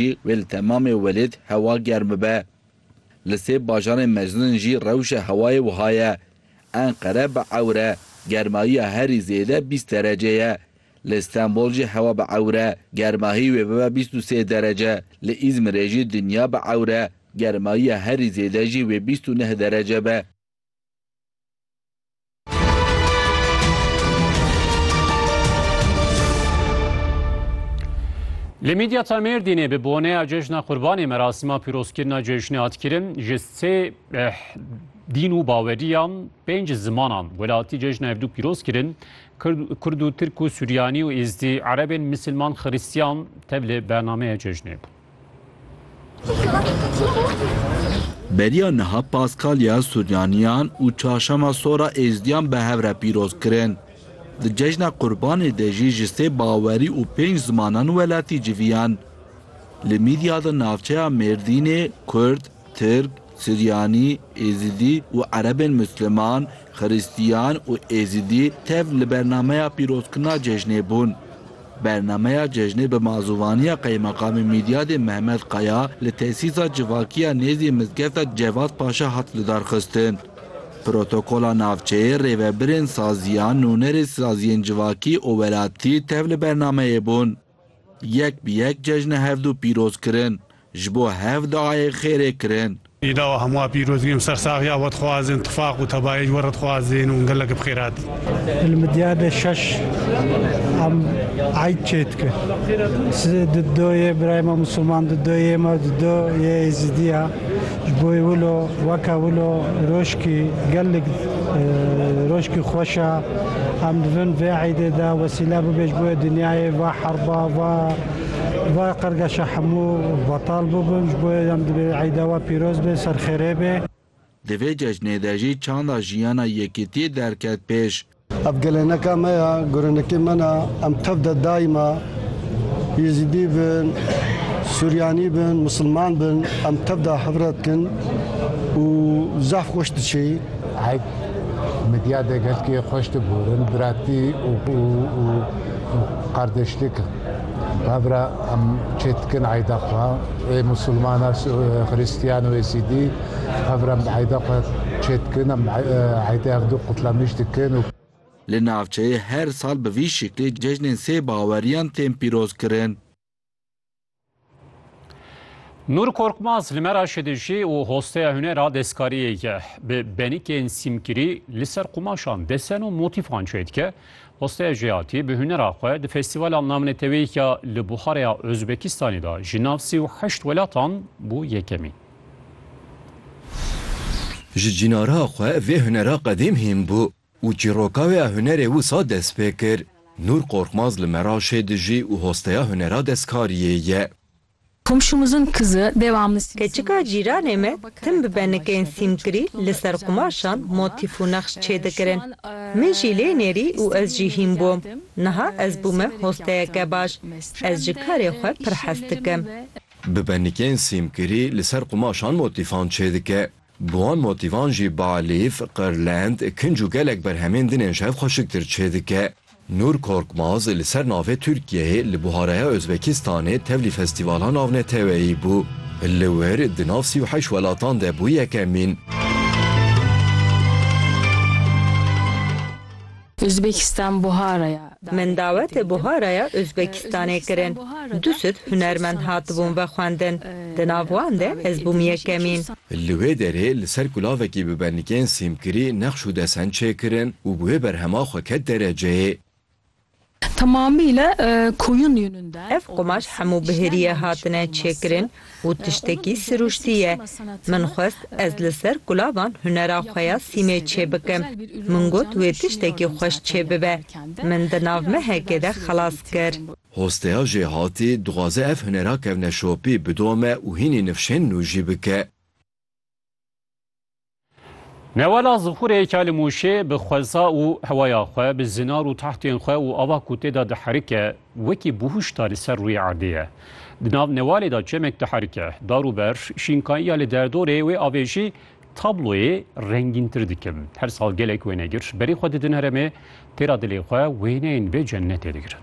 Wê li temamê welêt hewa germ bibe. Li sê bajarên mezin jî rewşa hewayê wiha ye, Enqere bi ewr e, germahiya herî zêde bîst derece ye. Li Stenbol jî hewa bi ewr e, germahî wê bibe bîst û sê derece. Li Îzmirê jî dinya bi ewr e, germahiya herî zêde jî wê bîst û neh derece be. Li Midyata Mêrdînê bi boneya cejna Qurbanê merasîma pîrozkirina cejnê hat kirin ji sê eh, dîn û baweriyan pênc zimanan welatî cejna hevdû pîroz kirin Kurd û Tirk û Suryanî û Êzdî Erebên Misilman Xirîstiyan tev li bernameya cejnê bû. Beriya niha Paskalya Suryaniyan û Çarşema Sora Êzidiyan bi hev re pîroz kirin. Di cejna Qurbanê de jî ji sê bawerî û pênc zimanan welatî civiyan. Li Mîdya de navçeya Mêrdînê Kurd, Tirk, Suryanî, Êzidî û Erebên Musliman, Xiristiyan û Êzidî tev li bernameya pîrozkirina cejnê bûn. Bernameya cejnê bi mazûvaniya Qeymeqamê Mîdyadê Mehmet Kaya li tesîsa civakî ya nêzî mizgefta Cevat Paşa hat lidarxistin. Protokola navçeyê rêvebirên saziya nûnerê saziyên civakî û welatî tev li bernameyê bûn. Yek bi yek cejnê hevdu pîroz kirin, ji bo hev diayê xêrê kirin. Îda we hemû a pîroz kirin, sersaxiya we dixwazin, tifaq û tebayê ji we re dixwazin û gelek bi xêr hatin. Li Midyadê şeş em eyd çê dikin. Siz di do yê birayê me Musulman, di do yê me, di do yê Êzîdî ya. Ji bo wilo weke wilo roşkî gelek roşkî xweş e. Em divin vê eydê de wesîle bibe ji bo wê dinyayê va herba va va qirgeşa hemû betal bibin. Ji bo wê em divê eyda we pîroz be, serxêrê be. Di vê cejnê de jî çanda jiyana yekîtiyê derket pêş. Ev gelêneka me ya, gurenikê me na, em tev de daima Yezîdî bin, Suryanî bin, Musilman bin em tev de hevre dikin û zaf xweş diçêî. Heyt medya de gelkî xweş diburin, biratî û qardeşlik hevre em çêdikin eyda xwe. Ê Musilman a, Xirîstiyan û Yezîdî. Hev re mieyde xwe çê dikin, em mieyde ev du qutlenîş dikin. Li navçeyê her sal bi vî şiklê cejnên sê baweriyan tên pîrozkirin. Nur Korkmaz li Meraşê dijî û hosteya hunera destkariyê ye. Bi benikên sîmkirî li ser qumaşan desen û motîfan çê dike. Hosteya Jiyatî bi hunera xwe di Festîvala Namnetewî ya li Buxareya Ozbekistanê de ji nav sî û heşt welatan bû yekemîn. Ji cînara xwe vê hunera qedîm hîn bû û çîroka wê ya hunerê wisa dest pê kir. Nûr Korkmaz li Meraşê dijî û hosteya hunera destkariyê ye. Komşumuzun kızı devamlı simsiyah Keçika eşya cîranê giyiyor, me baba tim bi karakter benikên nexşan sîmkirî çocukluğu li ser Hatice qumaşan Ayşe Yılmaz. motîf û nexş Ee, şu çêdikirin. an, ee, Min jî lê nêrî û ez jî İstanbul'da hîn bûm. geldim. Niha Ee, ez bûme severek hosteyeke yapraktan baş. ekmek Ez isteyen. ji karê Ee, xwe pir hez işyerlerimden dikim. ve Bi benikên sîmkirî li ser qumaşan motîfan çêdike. Bi wan motîfan jî balîf, qirlend, kinc û gelek berhemên din ên şev xweşiktir çêdike. Nur Korkmaz li ser navê Tirkiyeyê li Buharaya Ozbekistanê tevlî festîvala navneteweyî bû. Li wir di nav sî û heşt welatan de bû yekemîn. Uzbekistan Buhara ya Min dawetê Buhara ya Uzbekistanê kirin. Du sed hunermend hatibûn vexwendin. Di nav wan de ez bûm yekemîn. Li wê derê li ser kulavekî bi benikên sîmkirî nexş û desen çêkirin û bi wê berhema xwe ket dereceyê. Ev qumaş hemû bi hêriyê hatine çêkirin. Û tiştekî sirûştî ye. Min xwest ez li ser kulavan hunera xwe ya sîmê çêbikim. Min got wê tiştekî xweş çêbibe. Min di nav mehekê de xelas kir. Hosteya Jêhatî dixwaze ev hunera kevneşopî bidome û hînî nifşên nû jî bike. Newala zixurê Kali Mûşê bi xweza û hewaya xwe, bi zinar û tahtên xwe û ava ku tê de diherike, wekî bûhuşta li ser rûyê erdê ye. Di nav newalê de çemek diherike. Dar û ber, şînkayiya li derdorê wê avê jî tabloyê rengîntir dikin. Her sal gelek wênegir berî xwe didin heremê, têra dilê xwe wêneyên vê cennetê digirin.